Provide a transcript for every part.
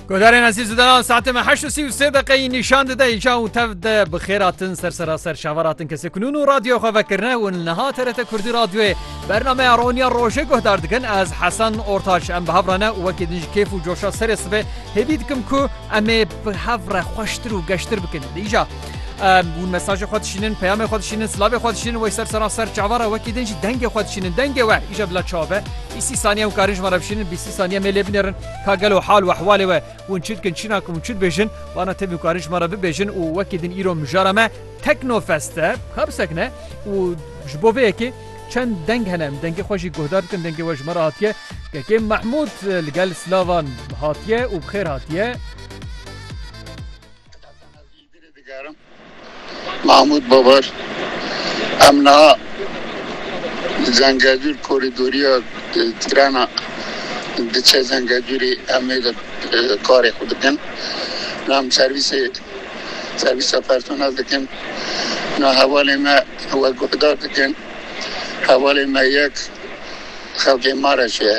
Godarên ezîz û denan saetê me heşt û sî û sê deqeyî nîşan dide îca û tev de bi xêratin ser seraser şavaratin kesê kunûn û radyo xwe vekirine û niha TRT Kurdî radyoyê bernameya roniya rojê guhdar dikin ez Hesen Ortaç em bi hevrane û wekî din ji kêf û coşa serê sibê hêvî dikim ku em ê bi hevre xweştir û geştir bikin dîja Hûn mesajê xwe dişînin, peyamê xwe dişînin, silavê xwe dişînin wey ser seran ser çava re wekî din jî dengê xwe dişînin. Dengê we îja bila çav be. Bîsî saniye hûn karin ji me re bişînin, bîsî saniye mêlê binêrin ka gelo hal û ehwalê we hûn çi dikin, çi nakin û çi dibêjin. Bana tevî hûn karin ji me re bibêjin û wekî din îro mijara me Teknofest e. Ka bisekine û ji bo vê yekê çend deng hene em dengê xwe jî guhdar bikin. Dengê we ji me re hatiye. Kekê Mehmûd li gel silavan hatiye û bi xêr hatiye. Îlgirê digerim Mahmûd Babar em niha li Zengezûr korîdoriya trena diçe Zengezûrê em ê de karê xwe dikin. Niha em servîsê servîsa personel dikin. Niha hevalê me we guhdar dikin. Hevalê me yek xelkê ma re çi ye.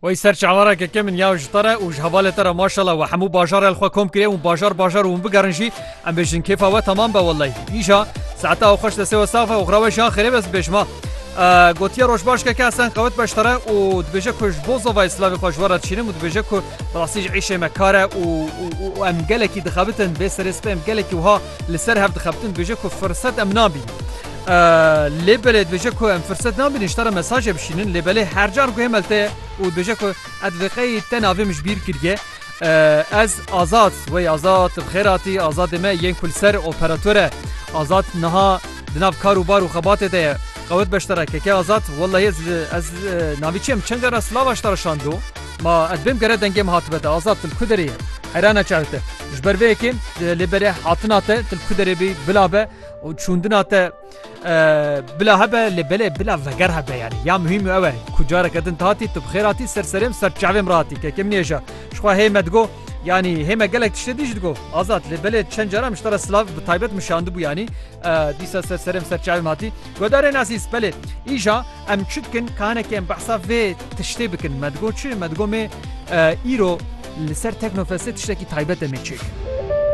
Wey ser çavara ke ke min ya ji te re û ji hevalê te re maşala we hemû bajarê li xwe kom kiriye û bajar bajar û hûn bigerin jî em bêjin kêfa we temam be wellahî. Îja saeta ew xweş destê we saf e û xira we jî ya xêrê be ez bibêjim ha. Gotiye roj baş ke ke Hesen qewit be ji te re û dibêje ku ji bo zovayê silavê xwe ji we re dişînim û dibêje ku bi rastî ji îşê me kar e û û û em gelekî dixebitin vê serê spê em gelekî wiha Li ser hev dixebitin dibêje ku firset em nabînin. Lê belê dibêje ku em firset nabînin ji te re mesajê bişînin lê belê her car guhê me li te ye û dibêje ku ez vê qeyî te navê min ji bîr kiriye. Ez Azad wey Azad bi xêr hatî Azadê me yên ku li ser operator e. Azad niha di nav kar û bar û xebatê de ye. Qewet beşdara keke Azad wellahî ez ez navî çi em çend cara silava ji te re şando ma ez bêm gere dengê min hatibe te Azad tu li ku derê yî? Heyrana çav te. Ji ber vê yekê lê berê hatina te til ku derê bî bila be û çûndina te bila hebe lê belê bila veger hebe yani ya muhîm ew e ku careke din hatî tu bixêr hatî ser serêm ser çavêm rahatî kekim nêja jixwe hê me digo yanî hê me gelek tiştê dî ji digo azad lê belê çend cara min ji te re silav bi taybet min şandibû yanî dîsa ser serêm ser çavêm hatî godarê nasîs belê îja Em çi dikin kanekê em behsa vê tiştê bikin me digot çi me digot mê îro li ser Teknofestê tiştekî taybet em ê çêkirin.